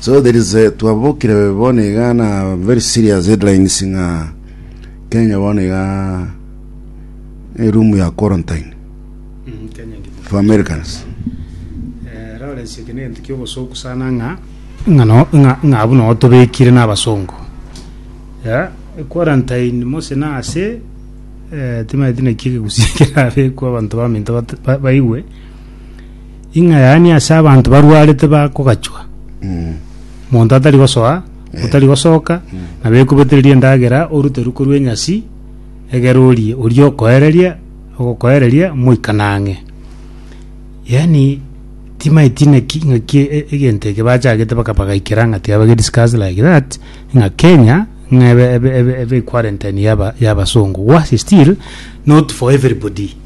So there is a, twabokire bono iga na very serious headlines ng'a Kenya bono iga eh, room ya quarantine Mm, Kenya ngima. for Americans. Eh, Lawrence eke nento kiobosoku sana ng'a ng'a no- ng'a- ng'a abuna otobekire n'abasongo ya quarantine mose na ase eh, timaeti naki egegusi kerabekwa abanto baminto bat- ba- baigwe Ing'a yaani ase abanto barwarete bakogachwa, monto atari gosoa, otari gosoka, na bekubetereria endagera orute ruko rwa enyasi, egere orie, oria okoereria, ogokoereria moikane ang'e. Yaani timaeti naki ng'aki e- e- egento eke bachagete baka bagaikera ng'a tiga bage discuss like that, ng'a Kenya ng'a ebe ebe ebe ebe equarantine yaba yabasongo, worse still not for everybody.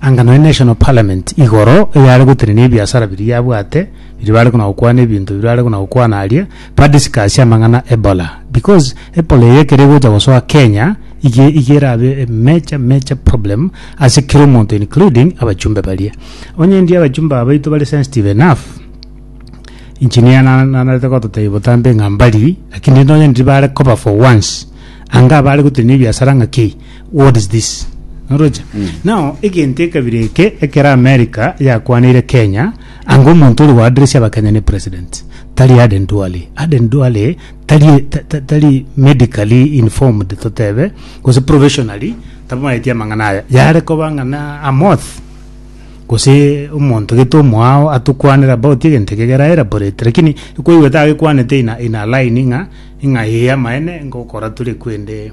Anga nonya National Parliament igoro eyare gotenenia ebiasara biria yabwate biria bare kona gokwana ebinto biria bare kona gokwana aria ba discuss amang'ana Ebola because Ebola eye ekero egocha gosoa Kenya iga iga erabe a major major problem ase kera omonto including abachumbe baria onye ndi abachumbe aba baito bare sensitive enough engineer na- na- narete gototebia botambe ng'a mbari lakini nonya ndiri bare koba for once anga abare gotenenia ebiasara ng'a ki What is this? Oroche. Now, egento ekabira eke ekero America yakwaneire Kenya, anga omonto ore goadressia abakenya ne president, tari Aden Duale. Aden Duale tari ta- ta- tari medically informed totebe, gose professionally tamaeti amang'ana aya. Yare koba ng'a na a moth gose omonto gete omoao atokwanere about egento eke kera elaborate lakini ekwaigwete agekwanete in a, in a line ng'a ng'a ee amaene ngokora tore kwende